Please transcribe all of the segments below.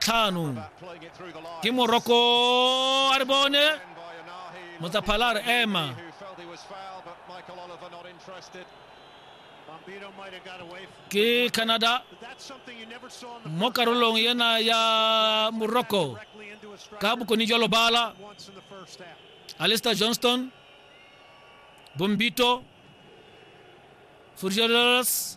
tlhano ke moroko a re bone motsaphala a re ema ke canada mo karolong ena ya morocco ka bokone jwa lobala alister johnston bombito furgeros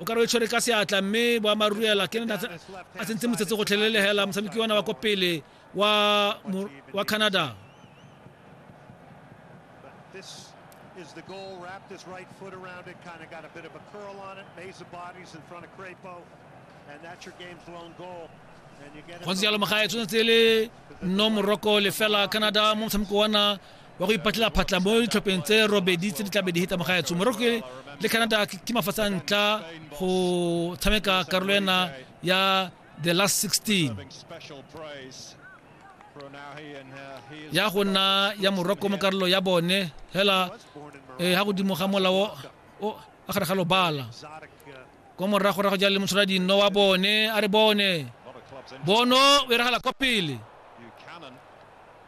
o ka re o e tshwere ka seatla mme boammaaruri ela ke ne a tsentse motsetse go tlhelelegela motshameki wa na wa ko pele wa wa canada This is the goal. Wrapped his right foot around it, kind of got a bit of a curl on it. Maze of bodies in front of Crapo, and that's your game's lone goal. go ntse jalo magae tshwanetse le no moroko lefela canada mo motshameko wa na wa go ipatlela phatla mo ditlhopheng tse robedi tse di tlabe di heta mo gaetsho morocco le canada ke mafatshe a ntlha go tshameka karolo ena ya the last 16 ya go nna ya morocco mo karolo ya bone hela eh, ha godimo ga molao o a gare ga lobala ko moragorago ja le motshwara dino wa bone a re bone bono o iragala kwa pele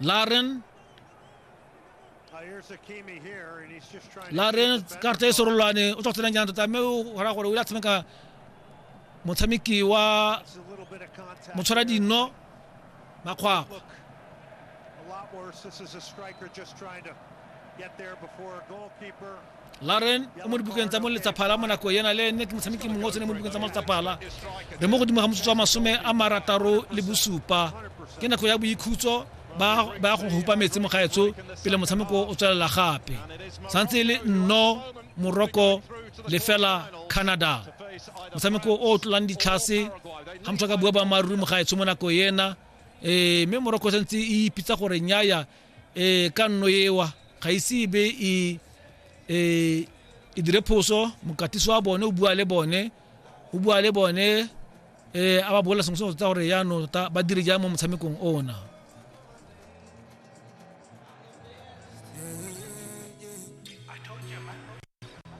laaren laaren karata e sorolwane o tswa tsenang jaana tota mme o gora gore o ile a tshameka motshameki wa motshwara dino makgwakgwa Get there before a goalkeeper. laren o mo dibukeng tsa moletsaphala mo nako ena le ene ke motshameki mongwe o tsene mo dibukeng tsa moletsaphala re mo godimo ga motsotso wa masome a marataro le bosupa ke nako ya boikhutso ba ya go hupa metsi mo gaetso pele motshameko o tswelela gape santse e le nno moroko lefela canada motshameko o o tlolang ditlhase ga motho ka bua boammaaruri mo gaetsho mo nako ena um mme moroko santse e ipitsa gore nyaya e ka nno ewa ga ise e be e e e dire phoso mokatiso wa bone o bua le bone o bua le bone eh a ba bolela sengwe sengwe tota gore yaanong tota ba dire jang mo motshamekong ona